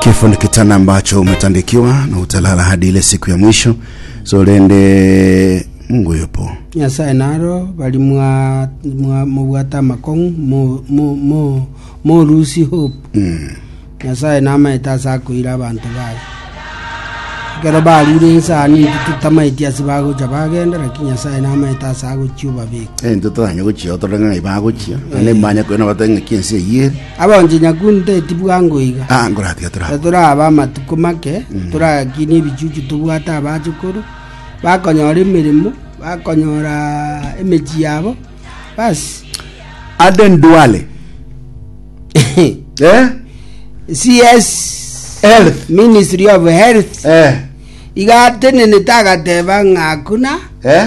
Kifo ni kitanda ambacho umetandikiwa na utalala hadi ile siku ya mwisho. So rende Mungu yupo. nyasae naro bari mwa- mwa- mobwate amakong'u mo- mo- mo- morusi hope Mm. nyasae namaete ase akoira abanto baye ekero barure ensani titamaeti ase bagocha bagenda lakini nyasae namaete ase agochia obabeka Eh, ntotoranya gochia otoreng'ai bagochia. Ane manya kwena bateng'aki ense eyere. Abonye nyakunto eti bwango iga, Ah, nkoratiga na torabwo. torabe amatuko make, torayakinie ebichuchu tobwate abachukuru, bakonyora emeremo, bakonyora emechie yabo, basi. Aden Duale. Eh? CS Health. Ministry of Health Eh. iga atenenete agateba ng'a hakuna Eh?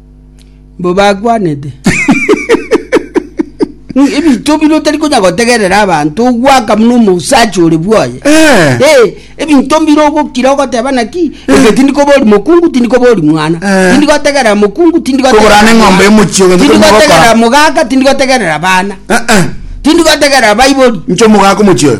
mbobakwanete ebinto bire otari konya gotegerera abanto ogwaka buna omosachi ore bwaye eh. eh, ebinto mbire ogokira ogoteba naki eh. eke tindi koba ori mokungu tindi koba ori mwana tindi gotegerera mokungu tindi gotegerera mogaka tindi gotegerera bana tindi gotegerera baibori ncho mogaka omochio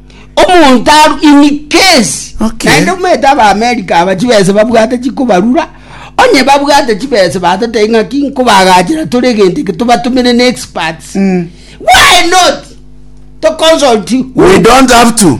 omonto aru in case Okay. naende omanyete abaamerika aba chibese babwate chikobarura onye babwate chibese batatei ng'aki nkobagachera tore egento eke tobatumire ne experts Mm. why not to consult you We don't have to.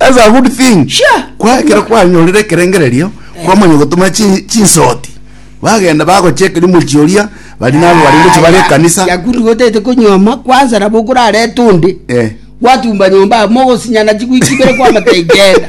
As a good thing Sure. kwa ekero kwanyorire ekerengererio kwamanya gotoma chi- chinsoti bagenda bagochia ekeria mochie oria bari nabo bari ngochia bare ekanisa yakuru gotete konyuoma kwansa nabo okorareta onde Eh. gwatumba nyomba amo mogosinyana chigwiki ibere kwamata igenda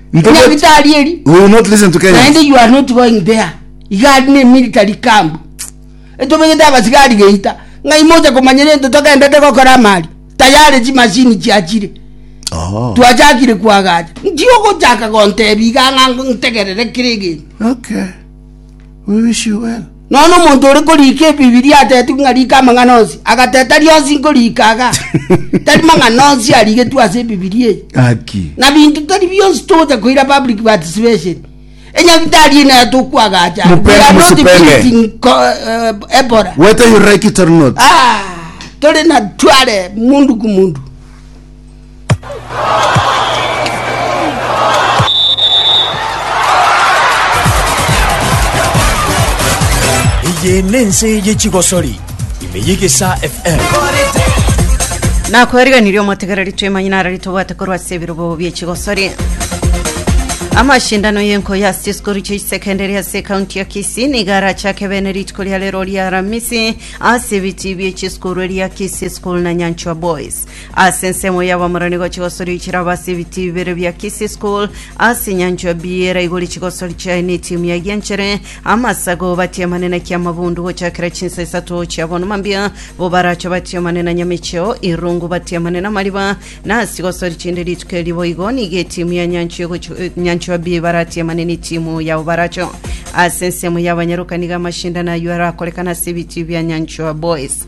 Ntobwati- Nyabitari eri. We will not listen to Kenyans. naende you are not going there iga ari ne military camp etobegete abasigari geita ng'ai mocha komanyera ento togendete gokora amari tayari chimashini chiachire Oh. twachakire kwagacha ntigogochaka gontebia iga ng'a ntegerere kera egento Okay. We wish you well. Nonya omonto ore korika Ebibilia atetigwe ng'a rika amang'ana onsi, agateta rionsi nkorika iga. Tari mang'ana onsi arigetwe ase Ebibilia eye. Haki. Na binto tari bionsi togocha koira public participation. Enyagitari eye naye tokwagacha. We Mupere are not musipere. visiting co- eh, Ebola. Whether you like it or not. Ah, tore na tware mundu ku mundu. Eye nense ye chigosori ime yegesa FM nakwariganirie omotegereri twemanye nara ritobwate korwa ase ebirobo biechigosori amashindano y'enkoyo ase chisikuru chia isekendari ase kaunti ya kisii niga arachake bene rituko ria rero ria aramisi ase ebiti biechisikuru eria kisii school na nyanchwa boys Ase ensemo y'abamorani gochia gosoria chirabo ase ebitiyo bibere bia Kisii School ase enyancho ya Biera igori chigosori chiaye na etimu ya Gianchere amasago batiamane na Kiamabundu gochakera chinsa isato chia bono mambia bo barache batiamane na Nyamecheo Irungu batiamane na Mariba na ase chigosori chinde rituko erio boigo nigo etimu ya Nyancho ya gochi- eh, Nyancho ya Bie baratiamane na etimu ya Obaracho ase ensemo y'abanyaroka nigo amashindano ayio arakorekana ase ebitiyo bia Nyancho ya Boys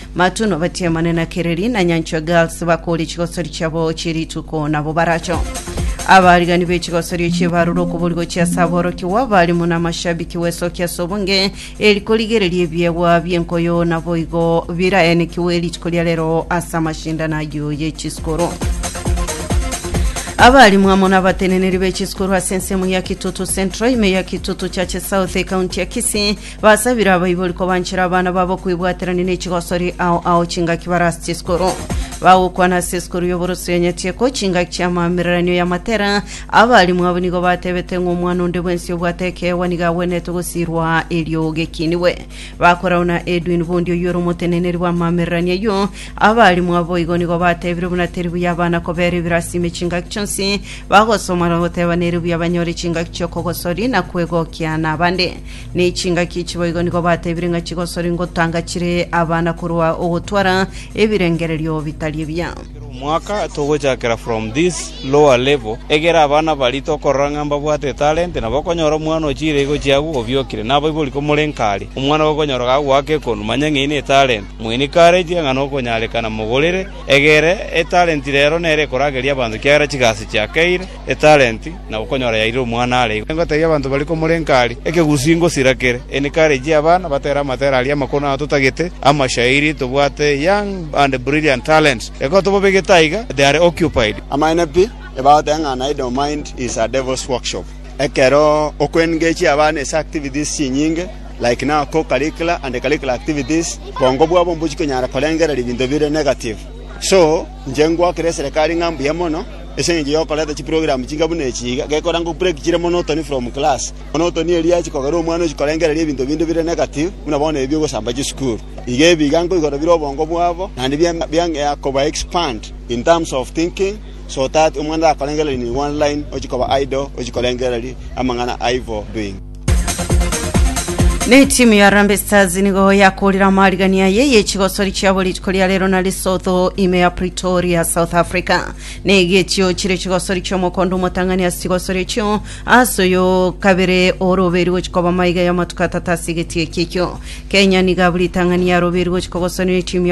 Matu nobatiamane na kereri, na nyanchwe girls bakore chigosori chiabo chie rituko nabo baracho. Abarigani be chigosori echio barure okuborigwa chia ase aborokigwa, abarimu na amashabiki wesokia ase obonge, eri korigereria ebiegwa bi'enkoyo naboigo biraenekigwe rituko ria rero ase amashindano ayio ye chisikuru. Abarimu amo nabateneneri be chisikuru ase ensemo ya Kitutu Central, ime ya Kitutu Church South, ekaunti ya Kisii, Basabire abaibori kobanchera abana babo kwebwaterania ne chigosori ao ao chingaki bare ase chisukuru. Bagokwana ase esukuru y'oboroso ya Nyatieko chingaki chi'amaamereranio y'amatera. Abalimu abo nigo batebete ng'a omwana onde bwensi obwate ekeegwa nigo agwenerete gosiirwa erio gekinigwe. Bakorau na Edwin Bondi oyio ore omoteneneri bw'amaamereranio ayio. Abalimu abo boigo nigo batebire buna teri buya abana kobeera ebirasi ime chingaki chionsi bagosoma na goteba nere buya banyore chingaki chi'okogosori na kwegokia nabande. Ne chingaki echi boigo nigo batebire ng'a chigosori ngotanga chire abana korwa ogotwara ebirengererio bitari ebiya. Kera omwaka togochakera from this lower level, egera abana baria tokorora ng'a mbabwate etalent, nabo okonyora omwana ochiire igo chiagu obiokire. Naboiboria komorenka aria, omwana gokonyora gagoaka ekonu, manya ng'a eyio netalent. Moencourage ng'a nokonyarekana mogorere, egere etalent rero nere ekorageria abanto kiagera chigasi chiakeire. etalenti, na okonyora yairire omwana are igo egotebia abanto baria komorenka aria, Ekegusii ngosira kere. Encourage abana batere amatera aria amakoro na atotagete amashairi tobwate young and brilliant talents ekero tobabegete aiga they are occupied. Amaene pi, ebagotenga ng'a an idle mind is a devil's workshop. Ekero okoengagechia abana ase activities chinyinge, like now co-curricular and curricular activities, bwongo bwabo mbochia konyara korengereria ebinto bire negative. So, inche ngwakera eserekari ng'a mbuya mono, Ase engencho y'okoreta chiprogramu chinga buna echi iga, gekorangwa kubreak chire monotony from class. Monotony eria yachi kogera omwana ochi korengereria ebinto binde bire negative, buna bono ebi bigosamba chisukuru. Iga ebi iga nkoigora bire obongo bwabo, naende biang biang'ea koba expand in terms of thinking, so that omwana takorengereria nigwa online, ochi koba idle, ochi korengereria amang'ana aivo doing. Ne timu ya Harambee Stars nigo yakorire amarigani aye yechigosori chiabo rituko ria rero na Lesotho ime ya Pretoria South Africa ne getio chire chigosori chiomokondo omotang'ani ase chigosori echio ase oyo kabere oroberi gochi koba maiga y'amatuko atata ase egetie eki ekio Kenya niga buri tang'ani yaroberi gochi kogosana ne timu ya